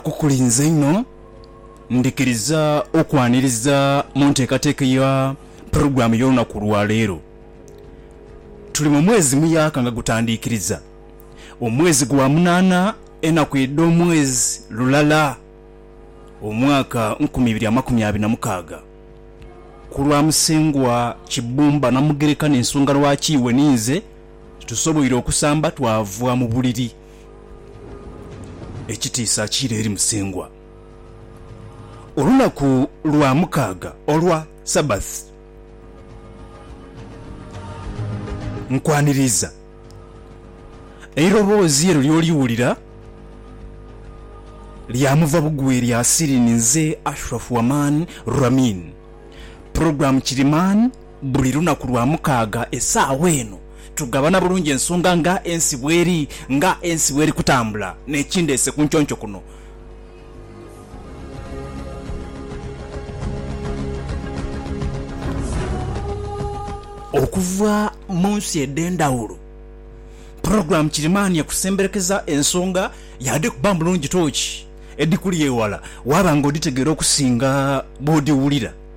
kukulinze inho. Ndhikiriza okwaniriza mu nteekateeka ya pulogulaamu y'olunaku lwa leero. Tuli mu mwezi muyaaka nga gutandiikiriza, omwezi gwa munaana, enaku edh'omwezi lulala, omwaka nkumi ibiri amakumi abiri na mukaaga. Ku lwa Musengwa Kibumba Namugereka n'ensonga lwaki iwe ni nze tusoboire okusamba twava mu buliri. Ekitiisa kiire eri Musengwa. Olunaku lwa mukaaga olwa Sabbath, nkwaniriiza eiroboozi eryo ly'oliwulira lya muva bugwi erya Asirini nze Ashraf Waman Ramin, Program Kirimani, Buli lunaku lwa mukaaga esaawa eno tugabana bulungi ensonga nga ensi bweri, nga ensi bweri kutambula n'ekindeese ku nconco kuno. Okuva mu nsi edh'endhawulo, pulogulaamu kirimaanhi ekusemberekeza ensonga yaadhikuba bulungi toochi edhikuli eghala waaba nga odhitegeera okusinga bw'odhiwulira.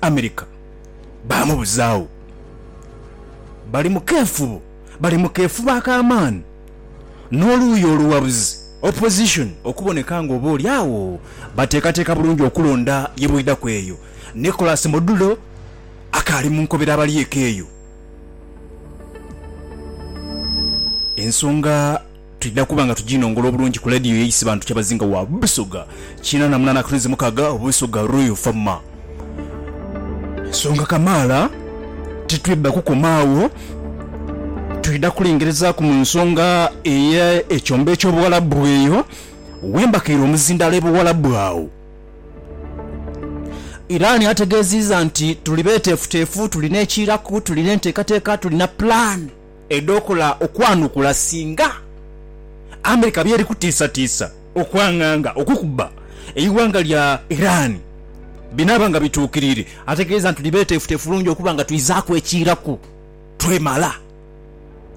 America baamubuzaagho. Bali mu keefubo, bali mu keefubo ak'amaani n'oluuyi olughabuzi, opposition, okuboneka nga oba oli agho bateekateeka bulungi okulonda ye bwidhaku eyo. Nicholas Modulo akaali mu nkobera abali eka eyo. Ensonga. Twidha kuba nga tuginongola obulungi ku ladiyo ye Isibantu Kyabazinga wa Busoga kina na munana akatunzi mukaga, Busoga Royal Fm. Ensonga kamaala titwidha kukoma agho, twidha kulengerezaku mu nsonga eye ekyombo ekyobuwalabu eyo wembakaire omuzindaalo ebuwalabu agho. Iran ategeziiza nti tuli betefutefu, tulina ekiiraku, tulina entekateka, tulina plan. edhookola okwanukula singa America byeri kutiisatiisa okwanganga okukuba eighanga lya Iran binaaba nga bituukiriire, ategeeza nti tuli beeteefuteefu bulungi okuba nga twizaaku ekiiraku twemala.